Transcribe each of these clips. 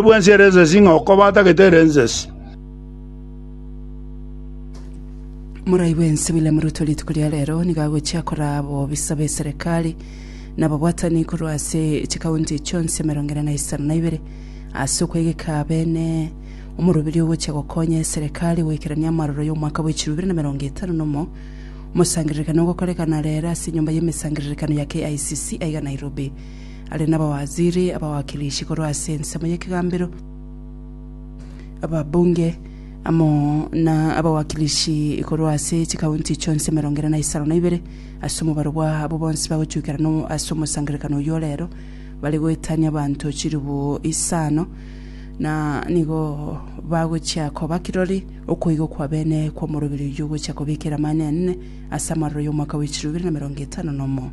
bw'ense ere ensesi ng'a oko batagete ere ensesi. Morai bw'ense William Ruto rituko ria rero nigo agochia koraa abobisa b'eserekari na ababwatani korwa ase chikaunti chionsi emerongo ere na isano na ibere ase okwegeka beene omoroberio ogochia gokonya eserekari goikerania amaroro y'omwaka bwa echiru bibere na emerongo etano na omo omosangererekano ogokorekana rero ase enyomba y'emesangererekano ya KICC aiga Nairobi. Are nabawaziri, abawakilishi korwa ase ensemo y'ekegambero, ababunge, amo nabawakilishi korwa ase chikaunti chionsi emerongo ere na isano na ibere, ase omobaro bwabo bonsi bagochukera no ase omosangererekano oyio o reero, bare goetania abanto chilifu isano, na nigo bagochia koba kirori okoigwa kwa bene kw'omoroberi oyio ogochia kobekera Amanene ase amaroro y'omwaka wa chilifu ibere na emerongo etano nomo.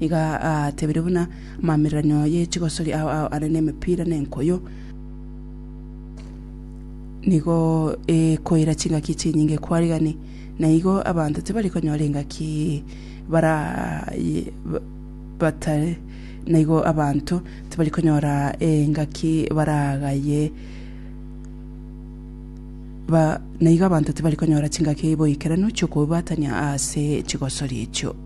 Nigo atebirie buna amaamiranio ye chigosori ao ao are nemepira na enkoyo, nigo ekoira chingaki chinyinge kware gani, na igo abanto tibari konyora engaki bara batare na igo abanto tibari konyora engaki baragaye na igo abanto tibari konyora chingaki boikeranu chi'okobubatania ase chigosori echio.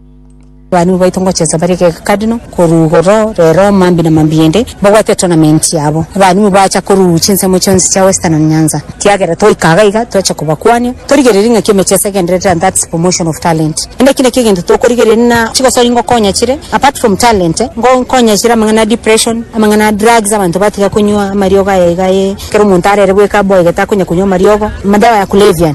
Abarimu baito ngochesa bare kekadino korugo roo rero mambi na mambi ende babwate tournament yabo abarimu bacha korugu chinsemo chionsi chia western and nyanza kiagera twaika iga iga twacha kobakwania torigereria ngaki emechesa egenderere and that's promotion of talent ende eki nakio egento tokorigereria na chigosori ngokonya chire apart from talent ngokonya chire amang'ana a depression amang'ana a drugs abanto batiga konywa amariogo aya iga ee ekero omonto arere bweka aboegete akonya konywa amariogo madawa ya kulevya.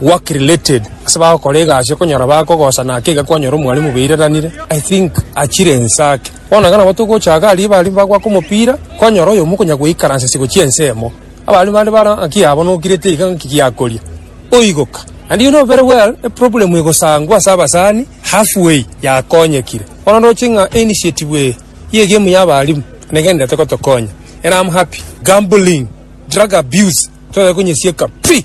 work related ase bagokora egasi okonyora bakogosa naki iga kwanyora omwalimu obaireranire I think achire ense ake bono iga nabo togochaka aria abarimu bagoaka omopira kwanyora oyomo okonya goikaransa ase gochia ense emo abarimu bande bare ng'aki yabo nokirete iga ng'aki giakoria oigoka naende you know very well eproblem egosangwa ase abasani half way yakonyekire bono ndoche ng'a einitiative eye ya egemu ya abarimu nigo enderete gotokonya and am happy gambling, drug abuse toye konyesieka pi.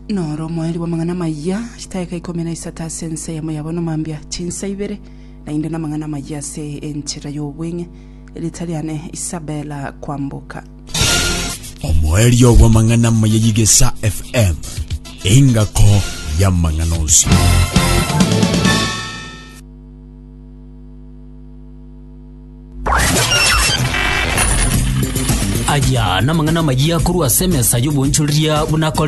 Noro omoerio bw'amang'ana amayia, chitaeka ikomi na isato ase ense eyemo yabo nomambia, chinsa ibere naende namang'ana amayia ase enchera y'obweng'e. Riita riane Isabella Kwamboka. Omoerio bw'amang'ana amaya y'Igesa FM, engako y'amang'ana onsi. Aya namang'ana amayia korwa ase emesa y'oboonchoreria buna akore.